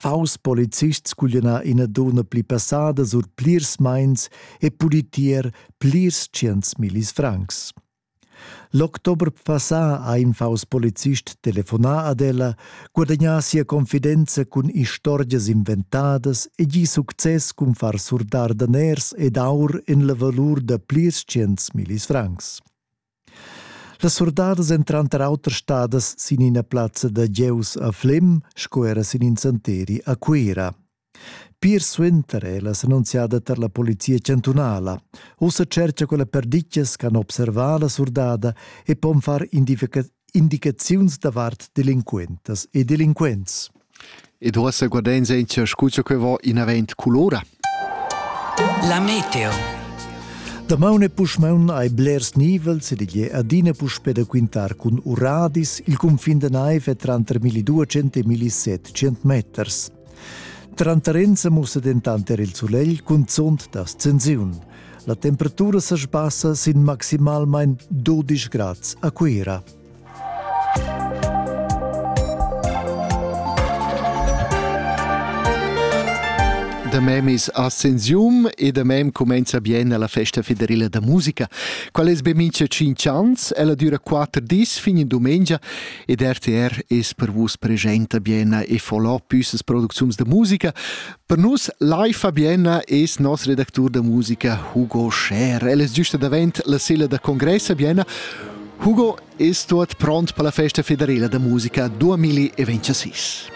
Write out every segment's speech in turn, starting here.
Faus polizists cugliana ina donna pli passada sur plirs meins e pudi tier plirs tschients millis francs. L'october passà ha in faus polizist telefonà ad ella, guadagnà sia confidenza cun istorgias inventadas e gi success cun far surdar daners ed aur en la valur da plirs tschients millis francs. Las surdadas èn tranter auter stadas sin ina plazza da gieus a Flem sco era sin in santeri a Cuira. Pir suenter è la s'annunziada tar la polizia chantunala. Ussa cercha quella perditgas ch'han observà la surdada e pon far indicaziuns davart delinquentas e delinquents. Ed uossa guardains aint scucha que vo inavant culura. La meteo. Damaun e puschmaun hai blers nivels ed igl è adina puspè da quintar cun uradis il cunfin da naiv è tranter 1200 e 1700 meters. Tranter ins mussa dentant er il sulegl cunzunt da ascensiun. La temperatura sa sbassa sin maximalmain 12 grads a Cuira. Da memis ascensium e da mem cumenza bien alla festa federila da musica. Qual es be mincha 5 ans, ella düra 4 dis fin in dumengia ed RTR es per vus presenta bien e follow püssas producziuns da musica, Per nus Lai Fabiena es nos redactur da musica Hugo Scher. El es giusta davent la silla da congress a Bienna. Hugo es tuot pront per la festa federela da musica 2026.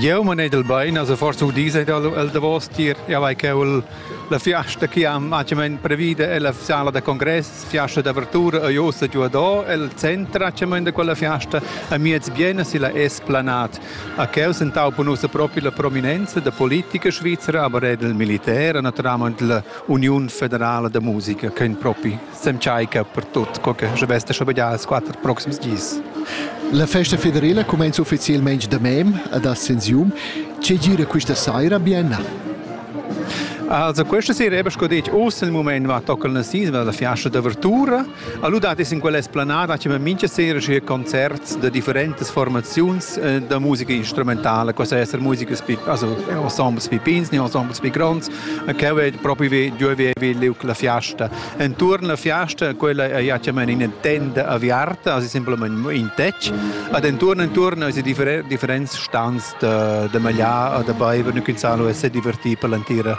Eu man edel bain, also forse u dis ed el davos tier, ja vai caul la fiasta che am acciament previda è la sala da congress, fiasta d'apertura a Josa giuadò, el centra acciament da quella fiasta a miez biena si la es planat. A quels entaupa nussa propi la prominenza da politica svizra, aber er del militär, naturalmente la Union Federala da Musica, che in propi s'entschaica per tut, co che je veste schon già als quattro proxims gis. La festa federala comincia ufficialmente da mem ad Ascensium. Che gira questa sera bien? Also, questa sera eben schon dit, aus il moment va tocca il nasismo, la fiastra d'avvertura, Allora dades in quella esplanada che mincha sera sche concerts da differentes formaziuns eh, da musica instrumentale, questa essere musica also ensembles pi pins, ne ensembles pi gronds, che ve proprio vi diovevi liuc la fiasta. Intorno la fiasta quella è ja in tenda aviarta, also simplement in tec, ad intorno intorno is differents stands da da magliar, da beiver, nücin salo e se divertir per l'antira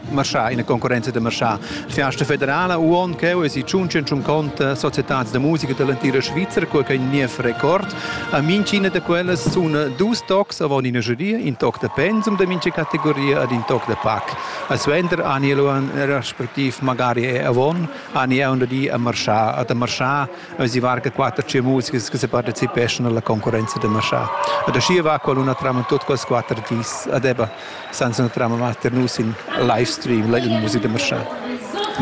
marchà, ina concorrenza da marchà. Fiasta federala uon cheu es i tschunchen tschun conta societads da musica dall'entira Svizra co che niev record. A mincina da quellas sun dus tocs avon ina jury, in toc da pensum da mincha categoria ed in toc da pac. A suenter ani eluan respectiv magari è avon ani è un di a marchà, ad a marchà a si varga quatter tschia musicas che se partecipeschan alla concorrenza da marchà. Ad ascia va qualuna traman tut quels quatter dis ad eba. senza entrar a metter nus in live stream, in musica da marchand.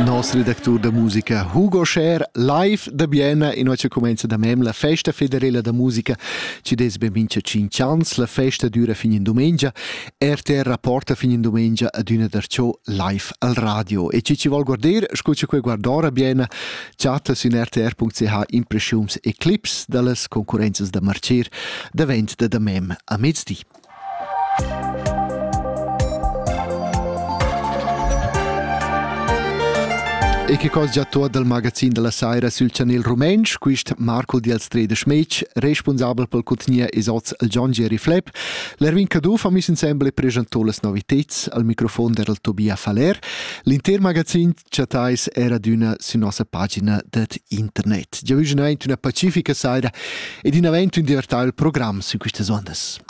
Nos redactur da musica Hugo Scher live da Bienna in oggi comenza da mem la festa federela da musica ci des ben mincha 5 ans la festa dura fin in domenica RTR rapporta fin in domenica ad una darciò live al radio e ci ci vol guarder scucha quei guardora Bienna chatta su in rtr.ch impressions e clips dallas concurences da marcir davent da da mem a mezdi E che cosa già tot dal magazin della saira sül chanel rumentsch, quist Marco di Alstrede Schmitsch, responsabel pel contgnier es hoz il John Jerry Flepp. L'Erwin Caduff ha miss insembel e preschantò las noviteds al microfon der Tobia Faller. L'inter magazin chattais era d'üna sü nossa pagina det internet. Già vügen aint üna pacifica saira ed in avant ün divertà il program sün quistas ondas.